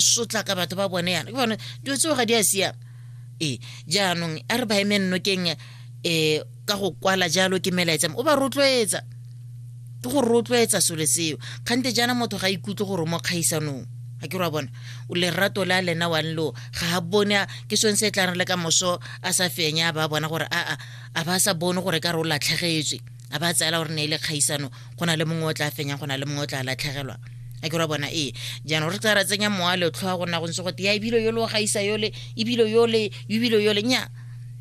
sotlaka batho ba bone yana ke bone dilo tseo ga di a siama ee jaanong a re ba eme nnokeng um ka go kwala jalo ke melaetsam o ba rotloetsa ke go rotloetsa selo seo kgante jaana motho ga ikutlwe gore mo kgaisanong ga ke ra bona o lerato le a lena wa nlo ga a bone ke sone se e tlang re le ka moso a sa fenya ba bona gore aa a ba sa bone gore ka re o latlhegetswe a ba tseela gore ne e le kgaisano go na le mongwe o tla fenyang go na le mongwe o tla latlhegelwa a ke ra bona ee jaanong re tsa ra tsenya mowa letlho a gona go ntse gote ya ebile yole o gaisa yole ebile yole ebile yole nya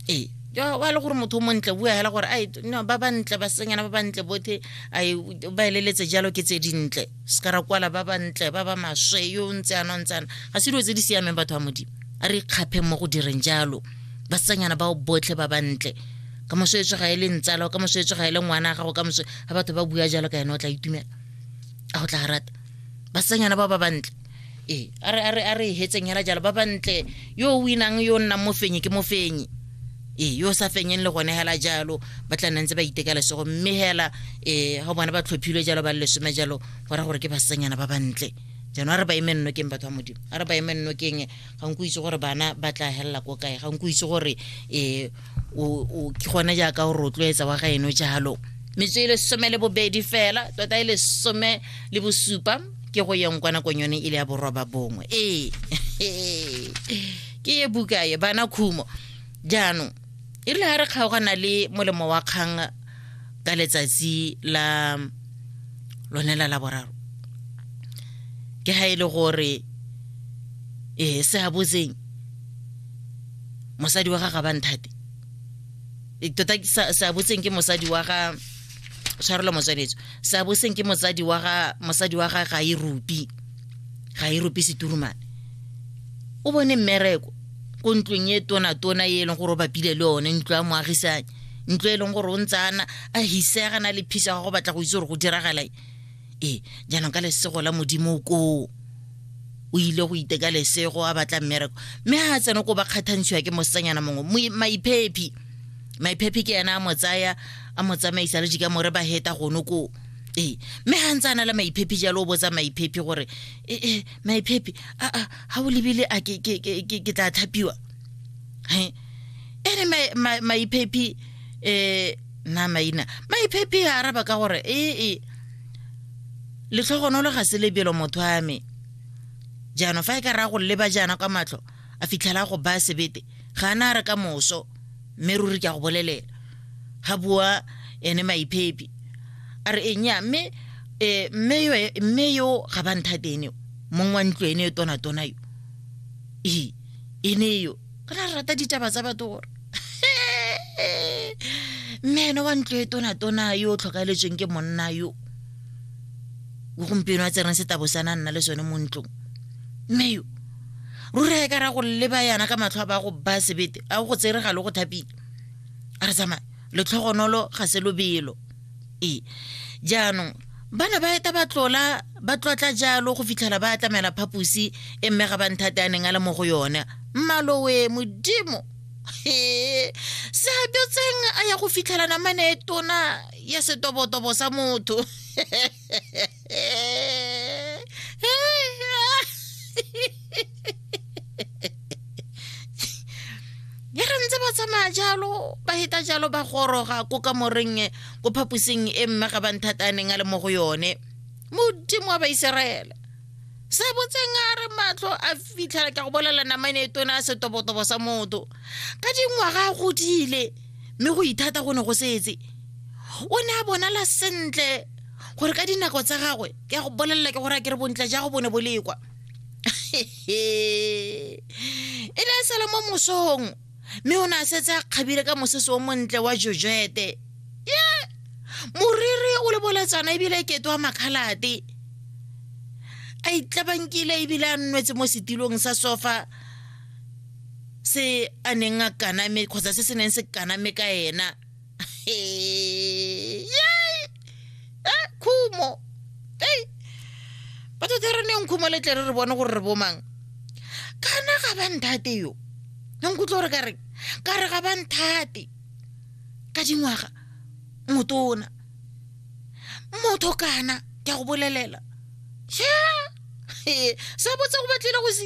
ee wa le gore motho o montle bua fela gore ai no ba bantle basenyana ba bantle bothe ai ba eleletse jalo ke tse dintle se ka ra kwala ba bantle ba ba maswe yo o ntse ana o ntse ana ga se dilo tse di siameng batho ba modimo a re ikgaphe mo go direng jalo basenyana bao botlhe ba bantle ka moso e tsega e le ntsala ka moso e tsega e le ngwana ga go ka moso ga batho ba bua jalo ka ene o tla itumela a go tla rata basanyana ba ba bantle ee a re a re a re hetseng hela jalo ba bantle yo o winang yo nnang mo fenye ke mo fenye ee yo o sa fenyeng le gone hela jalo ba tla nna ntse ba iteka lesego mme hela ee ga bone ba tlhophilwe jalo ba le lesome jalo go ra gore ke basanyana ba bantle jaanong a re ba eme nnokeng batho ba modimo a re ba eme nnokeng ga nko itse gore bana ba tla helela ko kae ga nko itse gore um o ke gone jaaka o rotloetsa wa ga eno jalo metso e lesome le bobedi fela tota e lesome le bosupa ke go yeng kwa nakong yone e le ya boroba bongwe ee ke ye buka ye bana khumo jaanong e rile ga re kgaogana le molemo wa kgang ka letsatsi la lone la laboraro ke ga e le gore ee se a botseng mosadi wa ga ga banthate e, tota seabotseng ke mosadi wa ga tshwarelo motsweletso seabotseng ke mosadi wa ga mosadi wa ga ga e rupi ga e rupi seturumane o bone mmereko ko ntlong e tona-tona e e leng gore o bapile le one ntlo ya moagisane ntlo e leng gore o ntse ana a hisegana le phisa ga go batla go itse gore go diragalae ee jaanong ka lesego la modimo koo o ile go iteka lesego a batla mmereko mme ga a tsena ko ba kgathantshiwa ke mosetsanyana mongwe maiphephi maiphephi ke ena a mo tsaya a mo tsamaisa le jika more ba heta gono koo ee mme ga ntse a na le maiphephi jalo o botsa maiphephi gore ee eh, maiphephi aa ga o lebile a ke tla thapiwa he ene maiphephi um eh, nna maina maiphephe a araba ka gore ee e. letlhogonolo ga se lebelo motho a me jaanong fa e ka raya go leba jaana kwa matlho a fitlhela go baya sebete ga a na a re ka moso mme ruri ke a go bolelela ga bua ene maiphephe a re enya mme eh, mme yo ga ba nthatene mong wa ntlo ene yo tonatona yo ee ene yo o ne a rata ditaba tsa batho gore mme ene wa ntlo e tonatona yo o tlhokaeletsweng ke monna yo o gompieno a tsereng setabo sa na nna le sone mo ntlong mme yo ruri a e ka ra go leba yana ka matlho a ba go ba sebete a go tsere ga le go thapile a re tsamaya letlhogonolo ga se lobelo e jaanong bana ba eta ba tlola ba tlotla jalo go fitlhela ba atlamela phaposi e mme ga ba nthate a neng a le mo go yone mmalowe modimo he se a dotseng a ya go fitlhela namane e tona ya setobotobo sa motho ya re ntse ba tsamaya jalo ba heta jalo ba goroga ko ka moreng e, ko phaposing e mme ga ba nthata a neng a le mo go yone modimo wa baiseraele se botseng a re matlho a fitlhela ka go bolela namane e tona a setobotobo sa motho ka dingwaga a godile mme go ithata go ne go setse o ne a bonala sentle gore ka dinako tsa gagwe ke ya go bolelela ke gore a ke re bontle ja go bone bo lekwa e ne a sala mo mosong mme o ne a setse a kgabile ka mosese o montle wa jojete ye moriri o le boletsana ebile e kete wa makgalate a itlabankile ebile a nnwetse mo setilong sa sofa se a neng a kaname kgotsa se se neng se kaname ka ena Hey, yay! Eh, khumo ei batho tse re neng khumo le tle re re bone gore re bomang kana ga ba nthate yo nkutlwe gore ka re ka re ga ba nthate ka dingwaga motona motho kana ke a go bolelela sha se botse go batlile go se